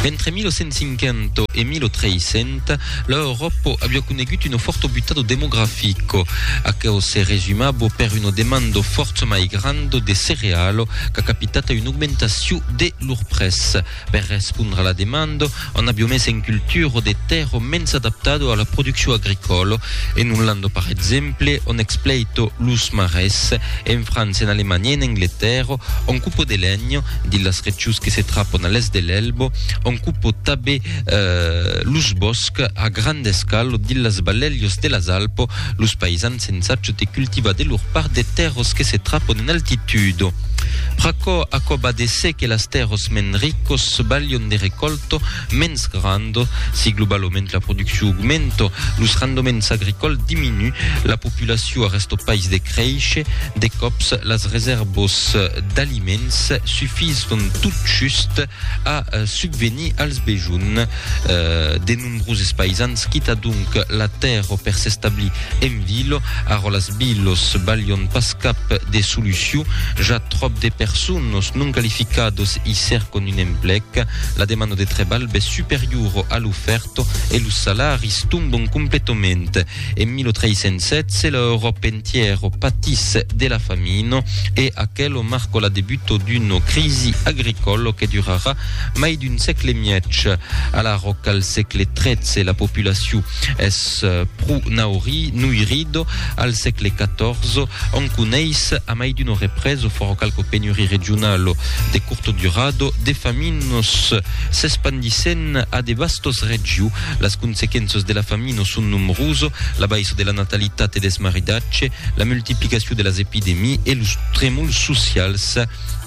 Entre 1850 e 1300, la Euròpa aviá conegut un fort obutado demografic. Aquò se resumava per una demanda fort mai granda de cereal qu'a capitat a una augmentacion de lor prètz. Per respondre a la demanda, Un avion mès en cultura de tèrra, mens adaptado a la produccion agricòla, en Olanda par exemple, on expleito los marès, en França, en Alemanha e en Angletèrra, on cupo de lenha dins las rechus que se trapan a l'èst de l'Elba, on cupo tabé los bòscs a granda escala dins las balèlhas de las Alpas, los paisans, Eth sensatge te cultiva de lor part de tèrros que se trapon en altitudo. Pr'aquò, aquò va de se que las tèrros mens ricos balhon de recòlto mens grando, si globaloment la produccion augmento, los rendements agricòls diminu, la populacion arresto pais de créishe, de còps las resèrvos d'aliments sufison tot just a subvenir als bejons de. Nombroses paisans quita donc la tèrra per s'establir en vila. Ara las vilas valion pas cap de solucion, ja tròp de personas non qualificadas i cercan un emplec. La demanda de trebalh bes superiora a l'ofèrta e los salaris tomban completament. En 1316 l'Euròpa entièra patís de la famina e aquela marca la debuta d'una crisi agricòla que durarà Mai d'un sègle e mièg a la ròca al sègle XIII la populacion es pro nauri Noirido al sègle XIV òm coneis a mai d'uno reprès o fòra qualque penuri regionalo de curto durado de faminos s'espandissèn a de vastos regiu las consequenças de la famino son nomroso la baissa de la natalitat e desmaridatge la multiplicacion de las epidemii e los tremols socials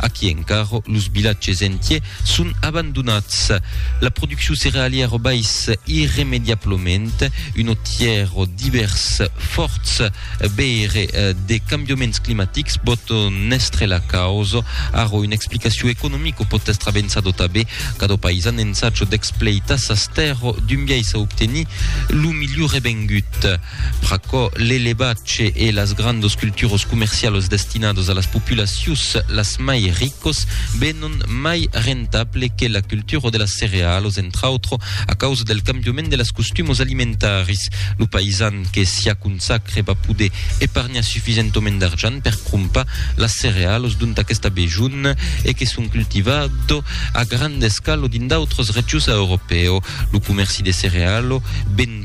Aquí encara los vilatges entiers son abandonats. La produccion cerealièra bais irremediablament un otièr divèrs fòrts veire de cambiaments climatics bòt n'èstre la causa. Ara una explicacion economica pòt èstre avençada tabé. Cada paisan ensaja d'expleitar sas tèrras d'un biais a obtenir lo milhor revengut. Pr'aquò, l'elevat ce e las grandos culturos comercialos destinados a las populacios las mai ricos venon mai rentable que la cultura de las cerealos, entr'autro a causa del cambiament de las costumos alimentaris. Lo paisan que s'i aconsacre va poder epargnar sufisentoment d'argent per crompar las cerealos dont aquesta besonh e que son cultivado a granda escala dins d'autras regions a Europèo. Lo comerci de cerealo ven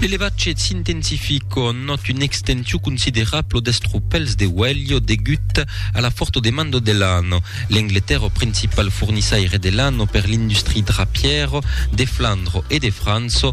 L'elevatge s'intensific o not un extensiu considerablo d'estropèls de uèlho degut a la forta demanda de lana. L'Angletèrra, principal fornissaire de lana per l'industria drapièra de Flandra e de França,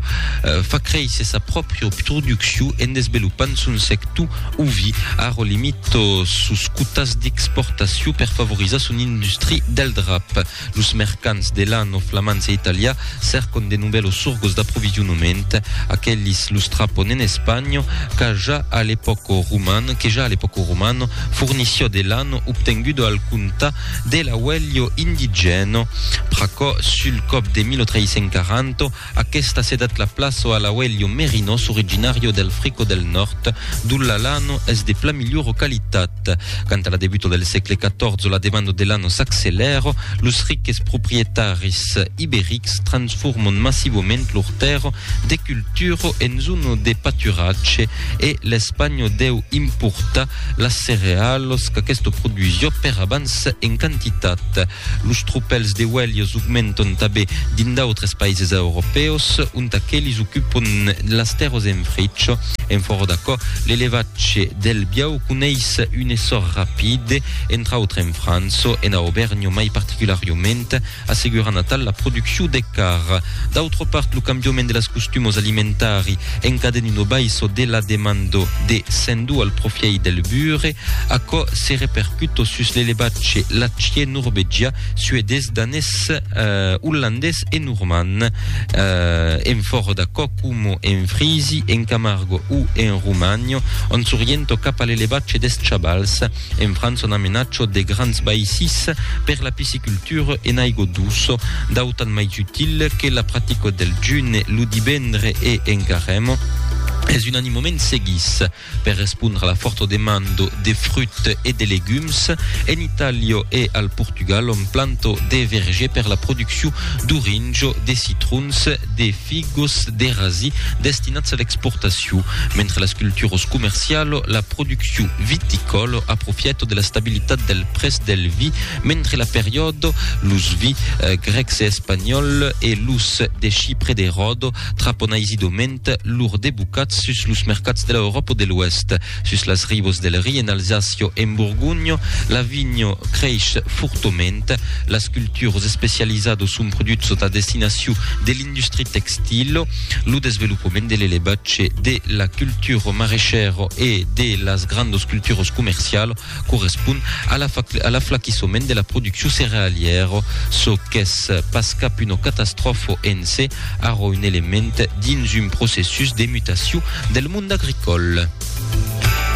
fa créisser sa pròpria produccion en desvelopant son sector Uvi, Arro limit sos quotas d'exportacion per favorizar son industri del drap. Los mercants de lan o flamands e italià cercon de novèlos sorgos d'aprovisionament. Aquelis los trapon en Espanha, qu'a ja a l'epòca roman, que ja a l'epòca romana fornissió de lan obtengudo al comptar de l'auelho indigène. Pr'aquò, sul còp de 1340, Aquesta se dat la plaço a l'auelho merinós originario del Frico del Nòrd, dont la lano es de plan milhora qualitat. Canta la debuta del sègle XIV la demanda de lano s'accelèra, los riques proprietaris iberics transforman massivament lor tèrra de cultura en zona de paturatge e l'Espanha deu importar las cerealas qu'aquesta produsiá per abans en quantitat. Los tropèls de uèlhs augmenton tanben dins d'autres païses europèus, ont aqueles ocupon las tèrras en fritz. En fòra d'aquò, l'elevatge del biau coneis un essor rapid, entre autres en França, ena Aubèrnha mai particulariament, assegurant atal la produccion de carn. D'autra part, lo cambiament de las costumas alimentari encadena una baissa de la demanda de sèndu al profièit del bure. Aquò se repercuto sus l'elevat ce l'atge norvegià, suedés, danés, ollandés e normand. En fòro d'aquò, coma en Frisi, en Camargo o en Romagno, ont s'oriento cap a l'elevatge des chabals, en França on amenaço de grands baissis per la piscicultura en aigo duso, d'autant mai util que la practica del june lo divendre e en caremo es un animoment seguís. Per respondre a la fòrta demanda de fruits e de legums, en Itàlia e al Portugal òm planta de vergers per la produccion d'orinhos, de citrons, de figos, de rasi destinats a l'exportacion, mentre las culturas comercialas, la produccion viticòla aprofièta de l'estabilitat del prètz del vi mentre la periòda, los vins grècs e espanhòls e los de Chipre de Ròda trapan aisidament. Eth lor debocat sus los mercats de la Euròpa o de l'Oèst, sus las ribos del Ri en Alsacio e en Borgonho, la vinho creish fortoment. Las cultures especializados son produits sota destinacion de l'industria textilo. Lo desvelopament de l'elevatge, de la cultura marechèra e de las grandos culturas comercialas correspon a la a l'aflaquissoment de la produccion cerealièra, çò qu'es pas cap una catastròfa en se, ara un element dins un processus de mutacion del mond agricòl.